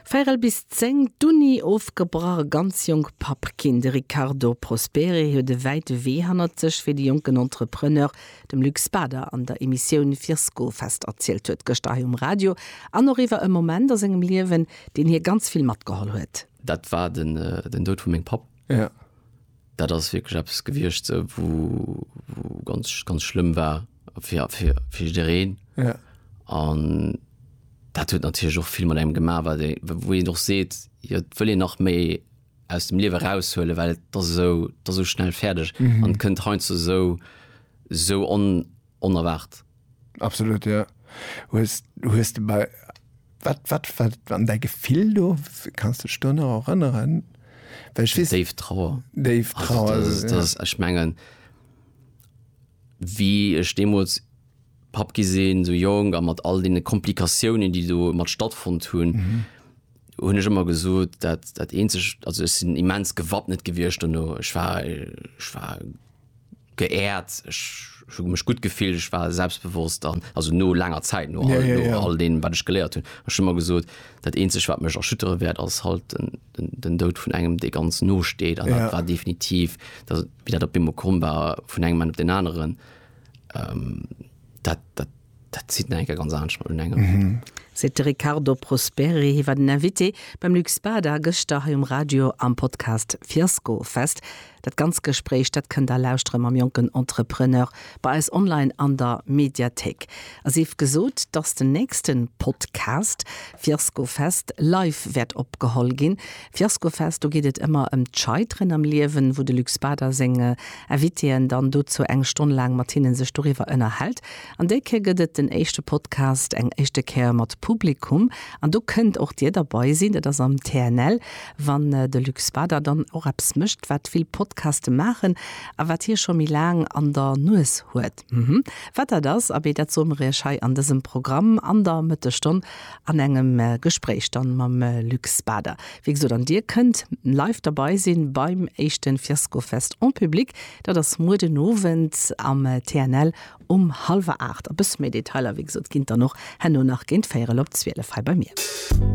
Véirel bis zéng, d'Uni ofgebrach, ganz jonk Papp ginn. De Riccardo Prosperi huet e wäite Wee hannert sech fir de jonken Entrepreneur, dem Luc Spader an der Emissioun Virskofest erzielt huet gëschter hei um Radio an och iwwer e Moment a sengem Liewen, deen hie ganz vill matgeholl huet. Dat war den Doud vu mengem Papp. Dat ass wierklech eppes gewiescht, wou, wou ganz, ganz schlëmm war fir, fir, fir jiddereen. Ja. An dat huet natierlech och vill mat engem gemaach, wat ee, wou een och seet, jo, et wëll een nach méi aus dem Liewe eraushuelen, well et ass esou, et ass esou schnell fäerdeg an kënnt heiansdo esou, esou on, onerwaart. Absolut jo. Hues hues de bei wat wat wat an däi Gefill do? Kanns de dech do nach erënneren? Well ech weess. Déif Trauer. Déif Trauer. Also dat ass ech mengen wéi ech deemools Papp gi sinn, sou jonk a mat all deene Komplikatiounen déi do mat stattfonnt hunn, hunn ech ëmmer gesot dat dat eenzegt, also ech sinn immens gewappnet gewiescht dono, ech war ech war, Geehrt, ech hu mech gutt gefillt, ech war selbstbewosst an, also no laanger Zäit, no all deem, wat ech geléiert hunn. Ech hu mer gesot, dat eenzegt, wat mech erschüttere wäert, ass halt den Doud vun engem, dee ganz no steet. An dat war definitiv, wéi dat op eemol komm war vun engem Moment op deen aneren, dat, dat, Dat zitt nach eng Kéier ganz anescht mat un engem. Seet de Riccardo Prosperi. Hie war den Invité beim Luc Spada gëschter hei um Radio am Podcast Fiaskofest. Dat ganzt Gespréich, dat kënnt der lauschtere mam jonken Entrepreneur bei eis online an der Mediathéik. A sief gesot, dass den nächsten Podcast Fiaskofest live wäert opgeholl ginn. Fiaskofest, do geet et ëmmer ëm d'Scheiteren am Liewen, wou de Luc Spader seng Invitéen dann dozou eng Stonn laang mat hinne sech doriwwer ënnerhält. An déi Kéier gëtt et den éischte Podcast eng éischte Kéier mat Publikum an do kënnt och Dir derbei sinn. Dat ass am TNL, wann de Luc Spader dann och eppes mécht, wat vill Podcaste maachen a wat hie scho méi laang an der Nues huet. Wat dat ass, abee, dat soe mer Iech hei an dësem Programm an der Mëttesstonn an engem Gespréich dann mam Luc Spader. Wéi gesot, an dir kënnt live derbei sinn beim éischten Fiaskofest en public. Dat ass muer den Owend am TNL um hallwer 8. E bësse méi Detailer, wéi gesot, ginn et dann och herno nach géint véierel op 12 hei bei mir.